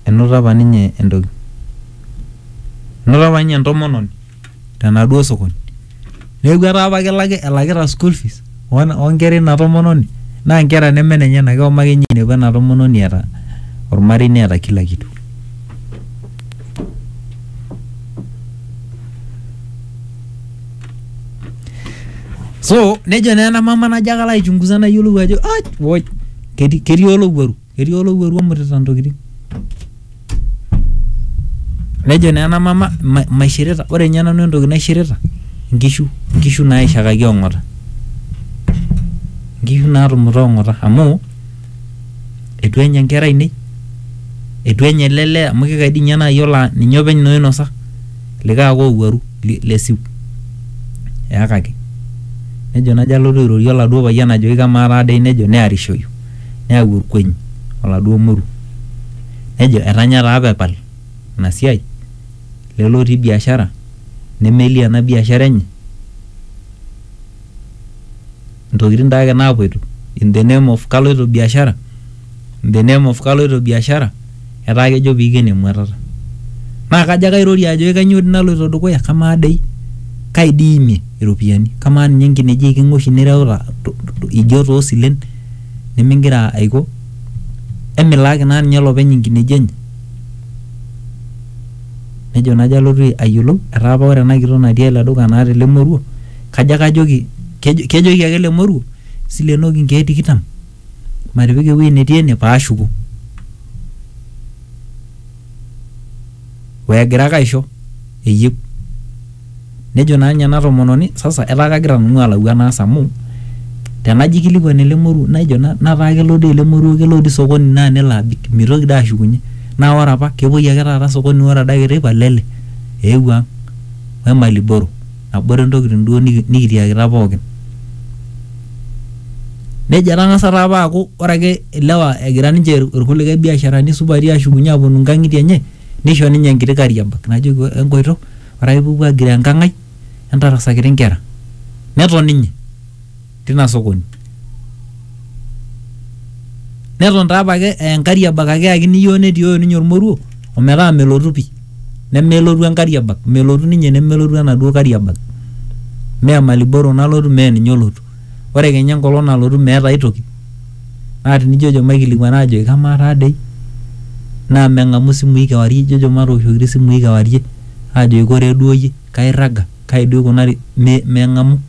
enoto apa ninye entoki enoto apa ninye entomononi tenaduo sokoni neeku etaa apa kelaki elakita school fees wan- onkera ina tomononi naa nkera neme nenyena keoma ake ninye ainepu ena tomononi eeta ormarei neeta kila kitu so nejo naa ena mama najo ake alo aichunguza nayiolou ajo "Ai, woi ketii ketii olowuaru etii olowuaru omutita ntokitin nejo naa ena mama "Ma- maishirita ore ninye nanu entoki naishirita nkishu nkishu naaishakaki ong'ota nkishu naatumuta ong'ota amu etu enya nkera ainei etu enya ele lee amu kikai dii ninye naa yiolo aa ninye openy naa oinosa likae ake owuaru li- lesiu eyakaki nejo najo alotu airorie oladuo payian ajoki kamaa taa dei nejo nearishoyu neyau olkueny oladuo moru nejo etanya taa pepal ina siai lelo otii biashara nemelie ena biashara enye intokitin taa ake naapuoito in the name of kaloito biashara in the name of kaloito biashara. etaa kejo piiken emuatata naa kajo ake airorie ajoki kanyoo dii naloito dukuya kamaa dei kai dii imie iropiyiani kamaa ninye inkineji eiking'a oshi nireuta to- to- ijo toosilen nimingira aiko emilaaki naa ninye olopeny inkineji enye nejo najo alotu ayiolou etaa apa ore ena kitok natii ele duka naata ele moruo kajo ake ajoki kejo- kejoki ake ele moruo silenoki inkeek tikitam matipik ewueji netii ene paashuku wegira ake aisho eyieu nejo naa ninye ena tomononi sasa etaa kagira nanu alau enaas amu tenajo aikilikuan ele moruo naijo na- nataa kelo dii ele moruo kelo dii sokoni naa nelo abik mitoki dii ashukunye naa ore apa kepuoi ake taata sokoni ore adake teipa lele eewuo ang wemali boro nabore ntokitin duo niki- nikitiakita pookin nejo etang'asa taa apa aaku ore ake ilewa egira ninche ir- irkulikae biasharani supati ashukunye aponu nkang'itie enye nisho ninye enkiti kariabag najoki "Ore enkoito ore ake pupuo agiroo enkang ai entarasakiti inkera neton ninye tina sokoni neton taa apake aa enkariabak ake eyakini iyiook netioyo ninye ormoruo ometaa melotu pi nemelotu enkariabak melotu ninye nemelotu enaduo kariabak mee maliboro nalotu mee ninye olotu ore kenya enkolong nalotu meeta ae toki naa tinijojo maikilikuana ajoki kamaa taa dei naa meng'amu isimui kewarie ijojo matooshokiti isimui kewarie ajoki koree duo iyie kairraga kai duo ikunari me meng'amu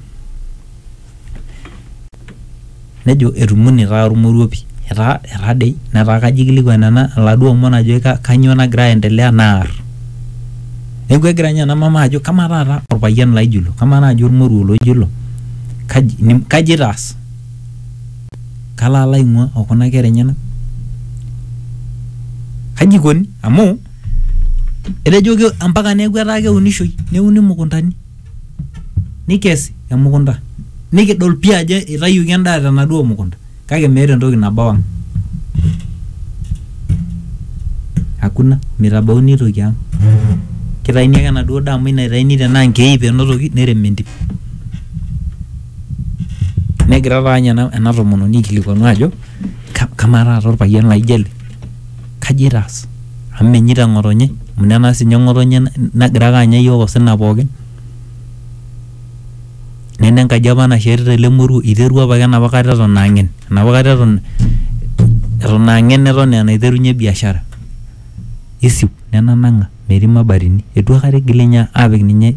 nejo etumunie taa ormoruo pi etaa etadei netaa kajo ikilikuan ena iladuo omon ajo ka- kanyoo nagira aendelea naar neeku egira ninye ena mama ajo kamaa taata orpayian laijo ilo kamaa naaji ormoruo laijo ilo kaji nim- kaji itaas kalo alo aing'ua okuna kera enyenak kaji ikoni amu etejoki ampaka neeku etaa keunishoi neuni imukuntani. nikes emukunta nikidol pii ajo eitayioki endaa tenaduo mukunta kake meeta entoki nabau ang hakuna mitabauni aitoki ang kitaini ake enaduo daa amu ina itaini tenaa nkeip enotoki nerem entim negira taanye ena, ena tomononi aikilikuanu ajo "Ka- kamaa taata orpayian laijo ele Kaji eitaas? Amu menyeita ng'otonye, amu tenaa sii ninye ng'otonye nagira ake anya iyiook osina pookin. Neme enkaji apa nashetita ele moruo, eiterua apake enapa kata eton aa ng'en. Enapa kata eton aa ng'en eton aa enaiterunye biashara. Eisiu nenang'a metii mabatini. Eitu aikata eigili ninye aapik ninye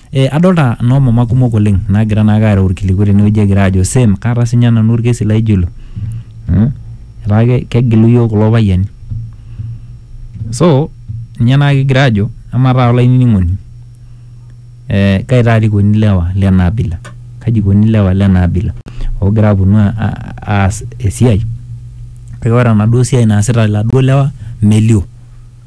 Eh, adolta noomama kumok oleng naagira naake aareu ilkiliku tenewueji egira aajo same kaata sinye nanu olkesi laijo ilo mm, etaa ke- kegilu iyiok kulo payiani so ninye naa kigira aajo amaa taata olainining'oni eh, kai taata eikoni ilewa lena abila kaji eikoni ilewa lena abila oogira aponu a- a- aas esiai kake ore enaduo siai naasita iladuo lewa melio.